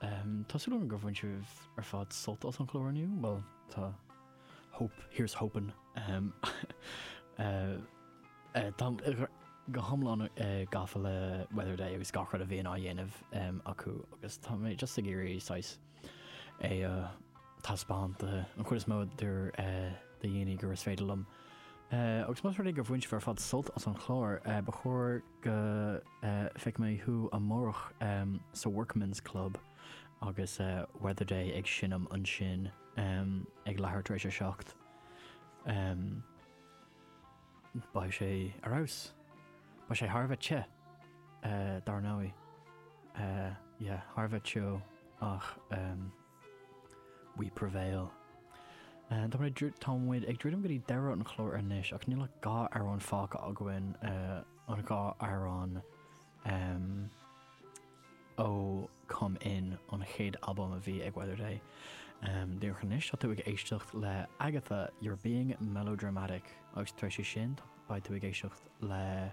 Tá súil agam gur bhain sibh ar fad sult as an chlár inniu, bhuel tá hope, here's hoping. Táim go hiomlán gafa le Weather Day agus gach rud a bhíonn á dhéanamh acu agus tá mé just ag iarraidh saghas é a thaispeáint an chuid is mó de dhaoine agus is féidir liom. Agus más rud é go bhain sibh ar fad sult as an chlár, ba chóir go feicfidh mé thú amárach sa Workman's Club agus Weatherday ag seinm ansin ag leathuair tar éis a seacht. Beidh sé ar fheabhas. Beidh sé thar a bheith te, dar ndóigh. Yeah, thar a bheith teo ach. We prevail. Tá muid ag, tá muid ag druidim go dtí deireadh an chláir anois ach níl ach dhá amhrán fágtha againn, an dhá amhrán ó Come In, an chéad albam a bhí ag Weatherday. Díreach anois, tá tú ag éisteacht le Agatha, You're Being Melodramatic agus tar éis sin beidh tú ag éisteacht le,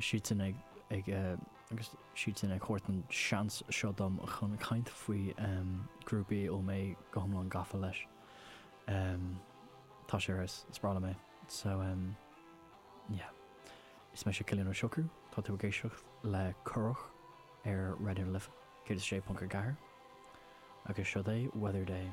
siadsan ag, agus siadsan ag thabhairt an seans seo dom chun caint faoi grúpa a bhfuil mé go hiomlán gafa leis. Tá sé ar fheabhas, is breá liom é. So yeah. Is mise Cillian Ó Siocrú, tá tú ag éisteacht le Currach ar Raidió na Life 106.4 agus seod é Weather Day.